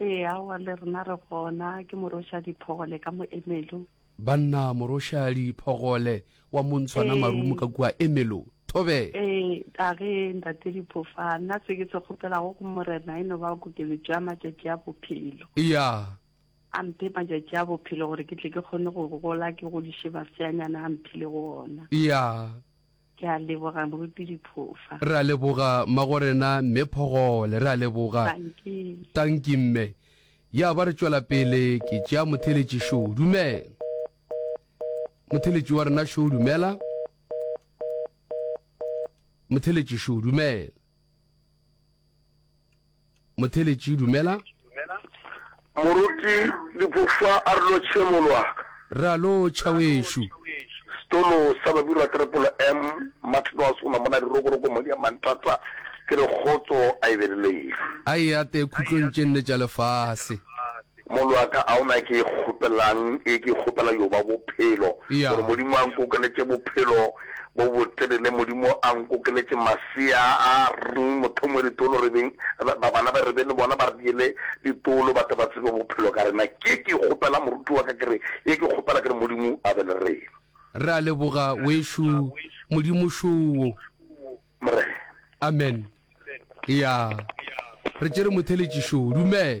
Ee, aowa, le rena re gona. Ke Morošadi Phogole ka mo Emelo. Banna, Morošadi Phogole wa Montshwana Marumo ka kua Emelo. Thobe! Ee, a ge, Ntate Diphofa, nna se ke se kgopelago go Morena e no ba kokeletšo ya matšatši a bophelo. Eya. A mphe matšatši a bophelo gore ke tle ke kgone go gola, ke godiše maseanyana a mphilego ona. Eya. Ke a leboga Moruti Diphofa. Re a leboga Mmagorena Mme Phogole. Re a leboga. Tanki. Tanki Mme. Ya ba re tšwela pele ke tšea Motheletši Show. Dumela. Motheletši wa rena Show dumela. Motheletši Show dumela. Motheletši, Dumela. Moruti Dipufa a re lo tšhemolwa. Re a lo tšha wešu. Setolo sa Babirwa Triple M, Martin wa sona mona Dirokoroko mo dia Mantata, ke re kgotso a e be le lena. A e ate khutlong tše nne tša lefase. Mollo wa ka, a o na ke e kgopelang, e ke e kgopela yo ba bophelo, gore Modimo a nkokeletše bophelo bo botelele, Modimo a nkokeletše masea a rng, mothomo ditolo re beng, ba bana ba re be le bona ba re diele ditolo, ba tle ba tsebe bophelo ka rena. Ke ke e kgopela moruti wa ka, ke re, e ke kgopela ke re Modimo a be le rena. Re a leboga wešu Modimošoo. Morena. Amen. Eya, re tšere motheletši šo. Dumela.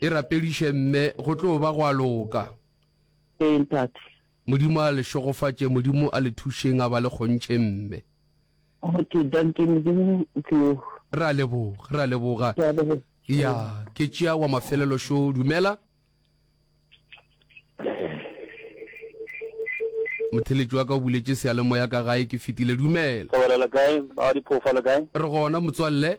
E rapediše mme, go tlo ba gwa loka. Ee, ntate. Modimo a le šegofatše, Modimo a le thušeng a ba le kgontše mme. Okay, dankie, Modimo o tlo. Re a leboga, re a leboga. Ke a leboga. Ya, ke tšea wa mafelelo šo, dumela. Motheletši wa ka o buletše seyalemoya ka gae ke fetile, dumela. Go bolela kae, ba ga diphoofolo kae? Re gona motswalle.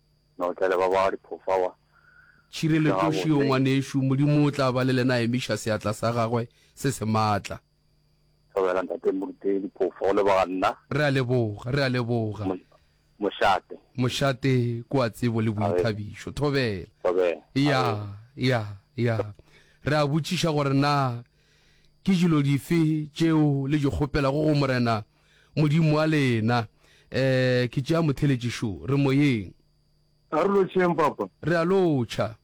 Notlele ba ba diphofawa. Tšhireletoši yo ngwanešu, Modimo o tla ba le lena emiša seatla sa gagwe se se maatla. Thobela ntate Moruti diphofa go leboga nna. Re a leboga, re a leboga. Mošate. Mošate ko a tsebo le boithabišo. Thobela. Thobela. Ya, ya, ya. Re a botšiša gore na ke dilo dife tšeo le di kgopelago go Morena. Modimo wa lena. E, ke tšea motheletši šo. Re moyeng. A re lotšheng, Papa. Re a lotšha.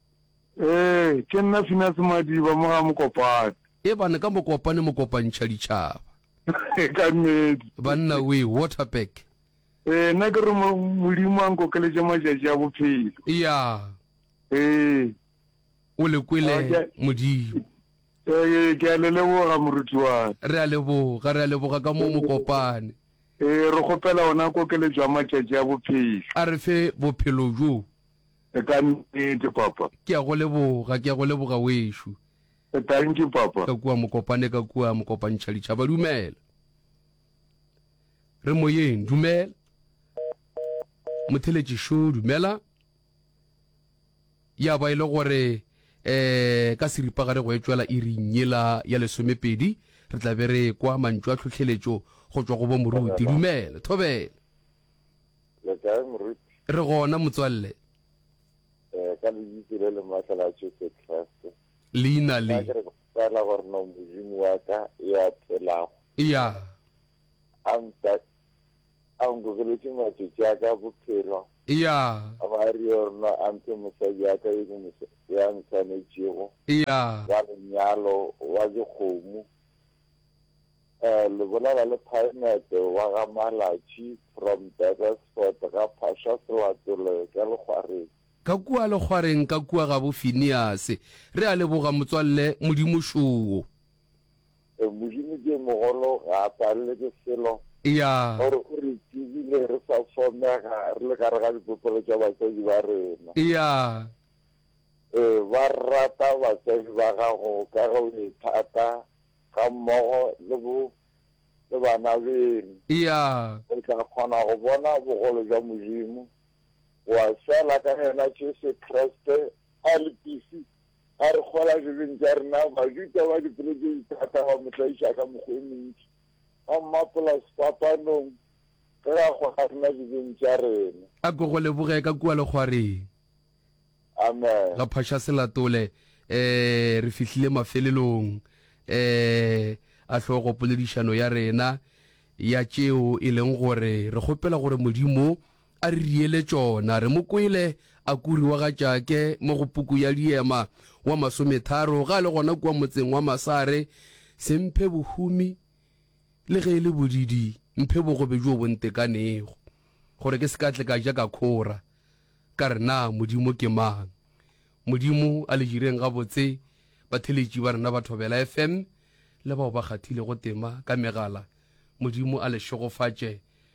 E, ke nna Finase Madiba, mo ga Mokopane. Ebane ka Mokopane mokopantšha ditšhaba. Ka nnete. Banna we, Waterberg. E, nna ke re mo, Modimo a nkokeletše matšatši a bophelo. Ya. E. O le kwele, Modimo. Ee, ke a le leboga, moruti wa ka. Re a leboga, re a leboga ka moo, mokopane. Ee, re kgopela ona kokeletšo ya matšatši a bophelo. A re fe bophelo bjo. E ka nnete, Papa. Ke a go leboga, ke a go leboga, wešu. E thank you, Papa. Ka kua, mokopane, ka kua, mokopantšha ditšhaba. Dumela. Re moyeng, dumela. Motheletši šo, dumela. Ya ba e le gore um ka seripagare go etšwela iring yela ya lesomepedi, re tla be re ekwa mantšu a tlhohleletšo go tšwa go bomoruti. Dumela. Thobela. Le kae moruti? Re gona motswalle. Eh, ka lebitso le le matla la Jesu Kriste. Leina le. Ke re ke kgopela gore no Modimo wa ka ya phelago. Ya. A mpa A nkokeletše matšatši a ka a bophelo. Eya. A ba a re yona a mphe mosadi ya ka yo ke mo, yo a nswanetšego. Eya. Wa lenyalo, wa dikgomo, eh, lebolela le phaemete, wa ga Malatši, from Durbesfort, ga Phasha Selatole, ka Lekgwareng. Ka kua Lekgwareng, ka kua gabo Phineas. Re a leboga, motswalle. Modimo šoo. Modimo ke mogolo, ga a palelwe ke selo. Eya. Gore o re tsebile re sa somega re le gare ga dipopelo tša batswadi ba rena. Eya. E ba rata batswadi ba gago ka ge o e thata ga mmogo le bo le bana beno. Eya. O tla kgona go bona bogolo bja Modimo wa sela ka yena Jesu Kriste a le pisi A re kgwela dibeng tša rena, Bajuda ba dipelo tše dithata ba mo tlaiša ka mekgwa e mentši, ba mmapola sefapanong ge a kgwela rena dibeng tša rena. A ko go leboge ka kua legwareng. Amen. Ga phaša se latole, ee, re fihlile mafelelong, ee, a hlogo poledišano ya rena ya tšeo e leng gore re kgopela gore Modimo A re riele tšona, re mo kwele a kuriwa ga Tšake mo go Puku ya Liema wa masometharo ga a le gona kua motseng wa Masare, Se mphe bohumi, le ge e le bodidi, mphe bogobe bjo bo ntekanego, gore ke se ka tle ka ja ka khora, ka re, Na Modimo ke mang? Modimo a le jireng gabotse, batheletši ba rena ba Thobela FM le bao ba kgathilego tema ka megala, Modimo a le šegofatše